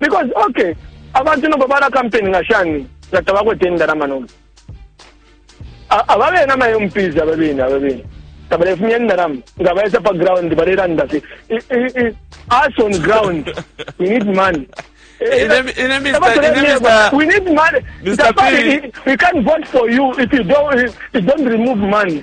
because okay abantu nomba bala kampeni nga shani nga tabakwete indalama nomba aba bena ama mps aba bena aba bena tabalefumya indalama nga baisa pa ground balelanda fi us on ground we need money eh, eh, eh, we need money. Mr. P. We can't vote for you if you don't, if you don't remove money.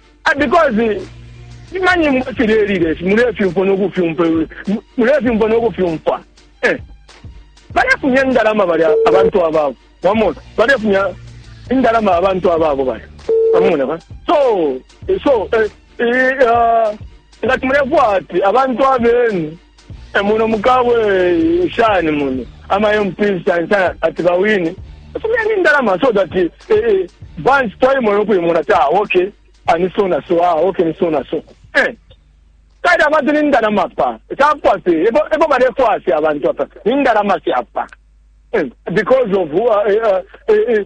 Because ima nyimbo chilelile si mulefyumfwa no kufyumfwa mulefyumfwa no kufyumfwa eh balefumya indalama bali abantu ababo wamona balefumya indalama abantu ababo bali wamona ba so so eh, eh, uh, ngati mulefwa ati abantu abenu E muno mukabwe shani muno ama MPs shani shani ati bawine fumyeni indalama so that eh, eh, bansi twaimona ukuimona ta ah, okay anisona so ah okay nisona so eh kali abantu ni ndalama pa tapwa se ebo ebo balefwa se abantu apa ni ndalama se apa eh, because of uh, uh, uh, uh,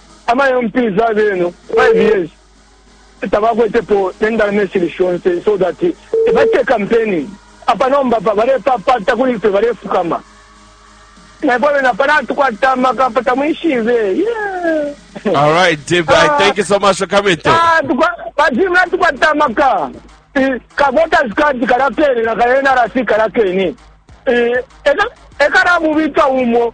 Amayo mpiza abeno 5 years tabakwetepo ne ndalama ishili shonse so that ebacite campaigning apa nomba apa balepapata kuli ifwe balefukama naifwe abene apa natukwata amaka apa tamwishibe yeah. All right, Dave. Ah. Thank you so much for coming through. Ah, tukwa- bazimu natukwata amaka Eh, kavoters card kalakene na ka nrc kalakene Eh, eka- ekalamubika umo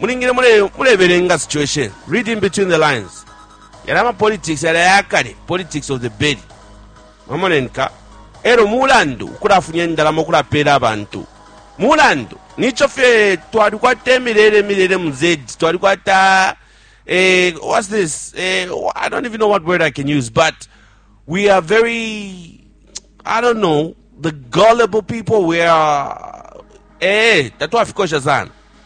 Mulingile mulebelenga situation, reading between the lines. Yalya ama politics yali ayakale, politics of the belly. Mwamona enka? Elo mulandu ukulafunya indalama ukulapela abantu. Mulandu, nicho fye twali kwa temi lele milele mzedi, twali kwa ta... eh, what's this? Eh, I don't even know what word I can use, but we are very, I don't know, the gullible people. We are, eh, tatu afikosha sana.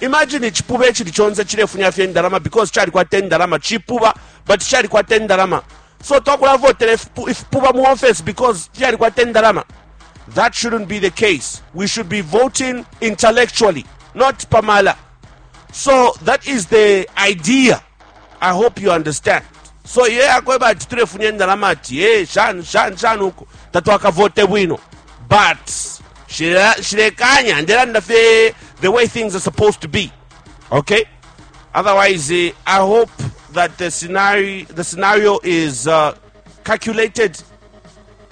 Imagine icipuba icili conse cilefunya fye indalama because calikwata indalama, cipuba but calikwata indalama so twakulavotela ifipuba mu office because fyalikwata indalama. That shouldn't be the case. We should be voting intellectually, not pamala. So that is the idea. I hope you understand. So ye akweba ati tulefunya indalama ati hey, shani shani shani huko tatwakavote bwino but shilekanya ndelanda fye the way things are supposed to be okay otherwise uh, i hope that the scenario the scenario is uh, calculated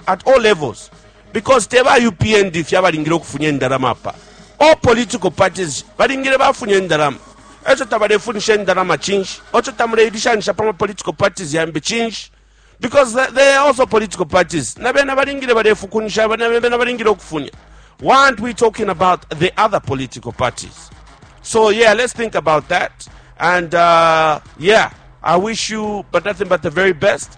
at all levels because te ba upnd fye abalingile ukufunya indalama apa all political parties balingile bafunya indalama eco tabalefunisha indalama cinshi oco tamuleilishanisha pa mapolitical parties yambi cinshi because they are also political parties na bena balingile balefukunisha na bena balingile ukufunya why aren't we talking about the other political parties so yeah let's think about that and uh, yeah i wish you but nothing but the very best